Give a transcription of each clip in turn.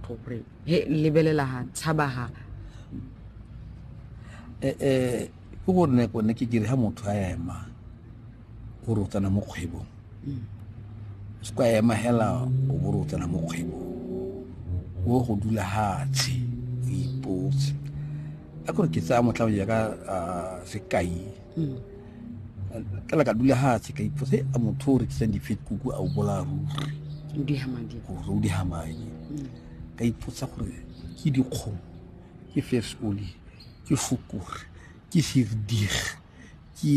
gore he lebelela ha tshaba ha eh, eh, ke gore ne kone ke kere ha motho a ema gore o tsena mo kgwebong mm. se kwa ema hela o bore o tsena mo kgwebong o go dula hatshe o ipotse a kore ke tsaya motlha o ya ka sekai mm. ka la ka dula fatshe ka ipotsa a motho o rekisang difetkuku a o bolaya ruri o di hamadi gore o di hamadi mm. ka ipotsa gore ke dikgomo ke first oli ke fokore ke firdig ke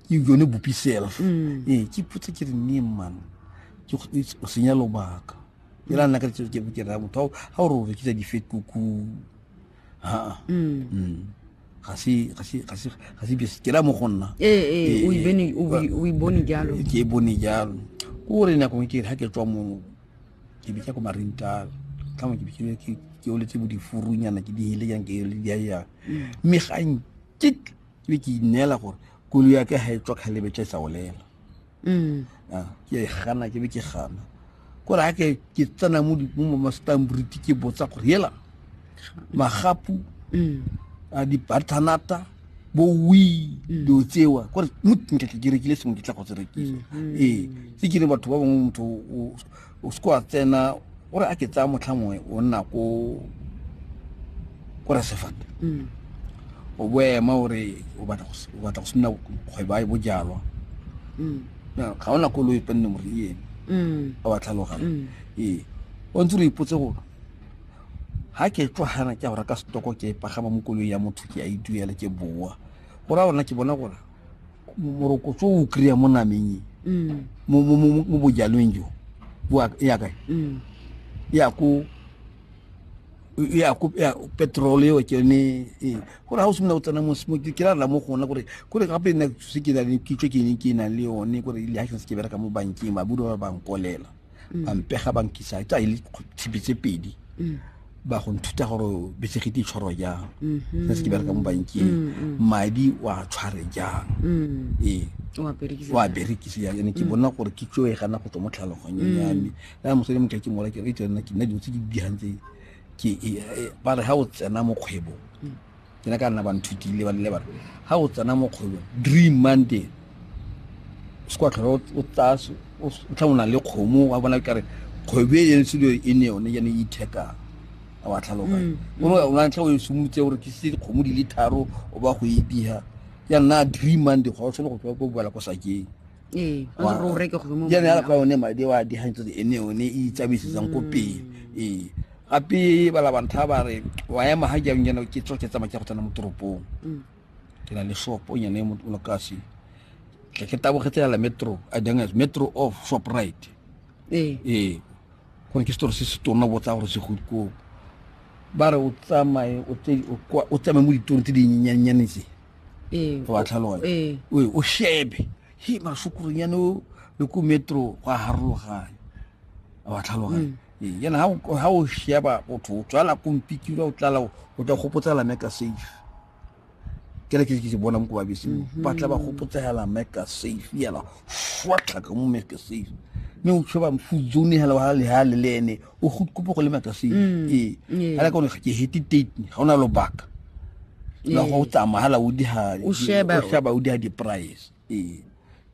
ke yone bopi self mm. ee ke ipotsa ke re ne man ke o senya lobaka e la nna ka ke ke ra motho ha o re o rekisa difetkuku ha mm. mm. ga se ga se ga se ga se bjesi ke la mo go nna ee eh, ee eh, o ibene eh, o o ibone jalo ke bone jalo o re nako ke ha ke tswa mo ke bitsa ko marintal ka mo ke bitsa ke ke o letse bo di furunyana ke di hele yang ke le dia ya mm. me gang ke ke ke inela gore kulu ya ke ha e tswa khalebe tsa sa olela mm. ah, ke e gana ke be ke gana kore ga ke ke tsena mo mastambriti ke botsa gore hela magapu mm. a dibathanata bo wi mm. dilo tsewa kore mo nka ke rekile sengwe ke tla go se rekisa ee se ke re batho ba bangwe motho o se wa tsena gore a ke tsaya motlha mongwe o nna ko ko rasefata mm. o boema gore o batla go simina kgwebo a e bojalwa mm. ga ona koloi penne more le ene mm. a wa tlhalogana ee o ntse re ipotse gore ga ke tlwagana ke a go reka setoko ke pagama mo koloi ya motho ke a e duela ke boa gore a ona ke bona gore morokotso o kry-a mo nameng e mm. mo bojalweng jo e ya kae mm. e ya ko e ya ko petrol eo ke yone e gore ga o simolola go tsena mo ke ra rela mo gona gore kore gape nna se ke na le kitso ke ne ke nang le yone gore le ga se ke bereka mo bankeng ba budi ba ba bankolela mm. ba mpega ba nkisa tsa e le tshipi tse pedi mm. ba go nthuta gore betsegete e tshwarwa jang mm-hmm. se se ke bereka mo bankeng mm, madi wa tshware jang ee wa berekise jang ene ke bona gore ke tso e gana go tswa mo tlhaloganyong ya me ya mosadi mo ke ke mola ke re e tsena ke nna dilo tse di digang tse ke e, e, ba re ha o tsena mo kgwebong ke ne ka nna ba nthutile ba nne batho ga o tsena mo kgwebong dream monday se kwa tlhole o tsaya o tla o na le kgomo wa bona kare kgwebo e yone selo e ne yone yane e ithekang a wa tlhaloganya mm, mm. o na tlha o e simolotse gore ke se dikgomo di le tharo o ba go e biha ya nna dream monday ga o tshwane go tswa ko boela ko sakeng ee o ne gore o reke gongwe mo yana ya kwa one madi wa di hantse e ne one e tsabisitsang ko pele mm. ee gape ba la bantha ba re wa ema ha jang yana ke tsoke tsa makia go tsena mo toropong mm. ke na le shop o nyane mo no kasi ke ke tabo khetsa la metro a jang as metro of shop right ee ee go ke store se se tona botsa gore se go ko ba re o tsamaye o tsamaye mo ditorong tse di nyenyane tse ee, go batla lone ee. o shebe he masokoronyane o le ko metro go a harologanya a wa tlhaloganya mm. ee, yana ha o sheba botho o tswala kompikilwa o tlala o tla gopotsa la meka safe ke le ke ke bona mo ko babese mm-hmm. ba tla ba gopotsega la meka safe yala fwatlhaka mo meka safe mme o tshoba mfudzone hela wa le ha le lene o go kopo go le makase mm, ee ee. ala kone ke hete date ga ona lobaka la ee. go tsamahala o di ha o sheba o sheba o di ha di price ee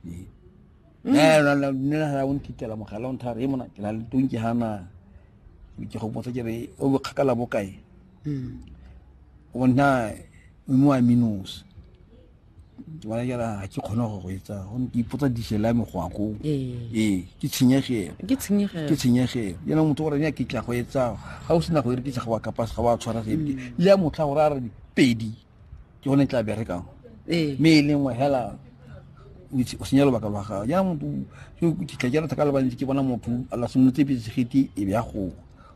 mm. eh la la ne la o ntitela mogala o nthare e mona ke la le tonke hana ke go botsa ke re o bo kgakala bokae mm. o nna mo aminos wa jara ga ke kgone go go etsa gone ke ipotsa dišela me go akoo ee. ee ke tshenyegelo ke tshenyegelo yana motho gore ya ke tla go etsa ga o sena go ere ke tsa ga wa kapase ga wa tshwara sepe mm. le ya motlha gore a re pedi ke gone tla berekang ee. mme e lengwe hela o senya lobaka lwa gago yana motho ke tla jara thaka le bantsi ke bona motho a la simolotse petse segeti e be ya goga